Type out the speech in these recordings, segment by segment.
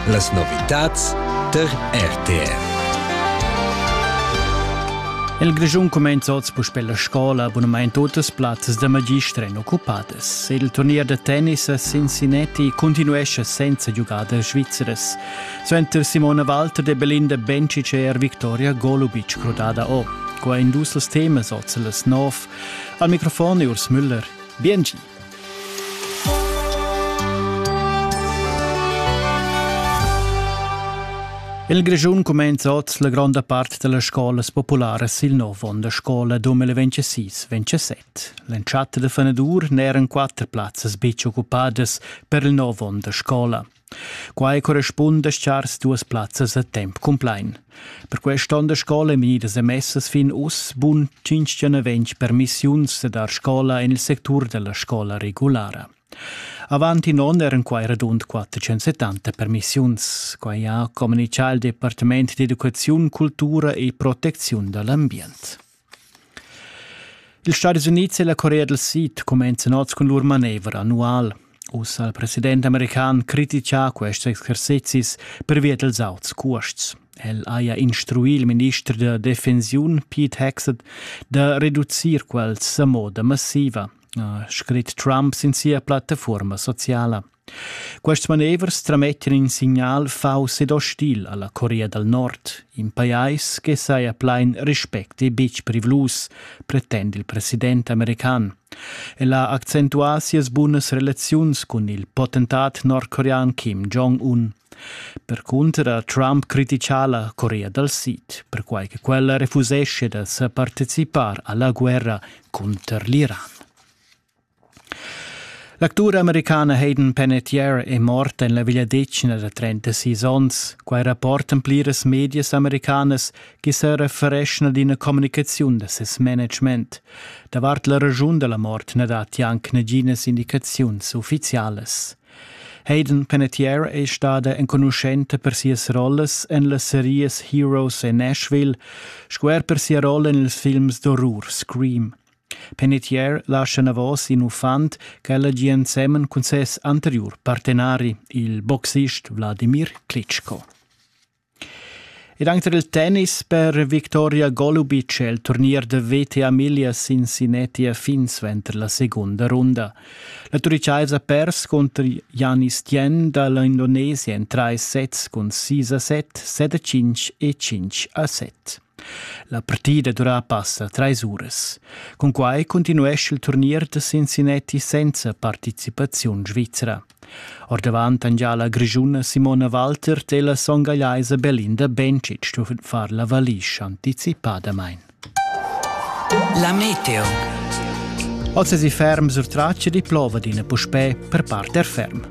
Las novitads tar RTR. Il Grischun cumenza oz puspè la scola abunamain totas plazzas da magister èn occupadas. Il turnier da tennis a Cincinnati continuescha senza giugadas svizras. Suenter Simona Walter de Belinda Bencic è er Victoria Golubic crudada o. Qua in dus temas oz las nov. Al microfon è Urs Müller. Biengi. Il Grischun cumenza oz la gronda part dellas scolas popularas il nov onn da scola 2026-27. L'entschatta da fenadur n'eran quatter plazzas betg occupadas per il nov onn da scola. Quai correspunda chars duas plazzas a temp cumplain. Per quest onn da scola èn vegnidas emessas fin uss bun 520 permissiuns da dar scola en il sectur da la scola regulara. Avant in onn eran quai radund 470 permissiuns. Quai ha communitgà il Departament d'educaziun, cultura e protecziun da l'ambient. Ils Stadis Unids e la Corea del Sid cumenzan oz cun lur manevra annual. Ussa ha il president american criticà quests exercizis pervia dels auts cuosts. El haja instruì il minister da defensiun Pete Hegseth da reducir quels a moda massiva, ha scrit Trump sin sia plattafuorma sociala. Quests manevers tramettan in signal fauss ed ostil alla Corea dal Nord, in pajais che saja plain respect e betg privlus, pretend il president american. El ha accentuà sias bunas relaziuns cun il potentat nordcorean Kim Jong-un. Percunter ha Trump criticà la Corea dal Sid, perquai che quella refusesce da sa participar alla guerra cunter l'Iran. L'actura americana Hayden Panettiere è morta en la vegliadetgna da 36 onns. Quai rapportan pliras medias americanas che sa refereschan ad ina communicaziun da ses management. Davart la raschun da la mort na datti anc naginas indicaziuns uffizialas. Hayden Panettiere è stada enconuschenta per sias rollas en las serias Heroes e Nashville sco er per sia rolla en ils films d'orrur Scream. Penetier lascha enavos in uffant ch'el hagi ensemen cun ses anteriur partenari, il boxist Vladimir Klitschko. Ed anche il tennis per Viktoria Golubic è il turnier de VTA Milia Cincinnati a fin suenter la seconda runda. La Turicaisa pers contro Janis Tien dall'Indonesia in 3 sets cun 6 a 7, 7 a 5 e 5 a 7. La partida dura passa treis uras. Cunquai continuescha il turnier da Cincinnati senza participaziun svizra. Ordavant han già la grischuna Simona Walter e la songagliaisa Belinda Bencic stuven far la valisch anticipadamain. La meteo. Oz è si ferm sur traccia di plova d'ina puspè per parte ferm.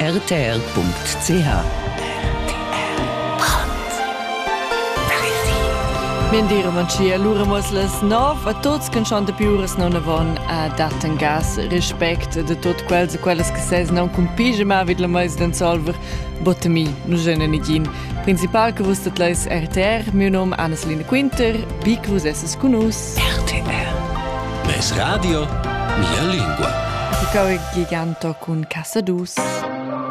rtr.ch Min dir Manchia lura mos las nov a tots che schon de piures non avon a datten gas respect de tot quels e quellas che ses non cun pige ma vid la meis den solver botemi nu jene nigin principal che vus dat leis RTR meu nom Anneslina Quinter bi che vus esses cun us RTR Es radio, mia lingua. Il cor è giganto cun Cassadus.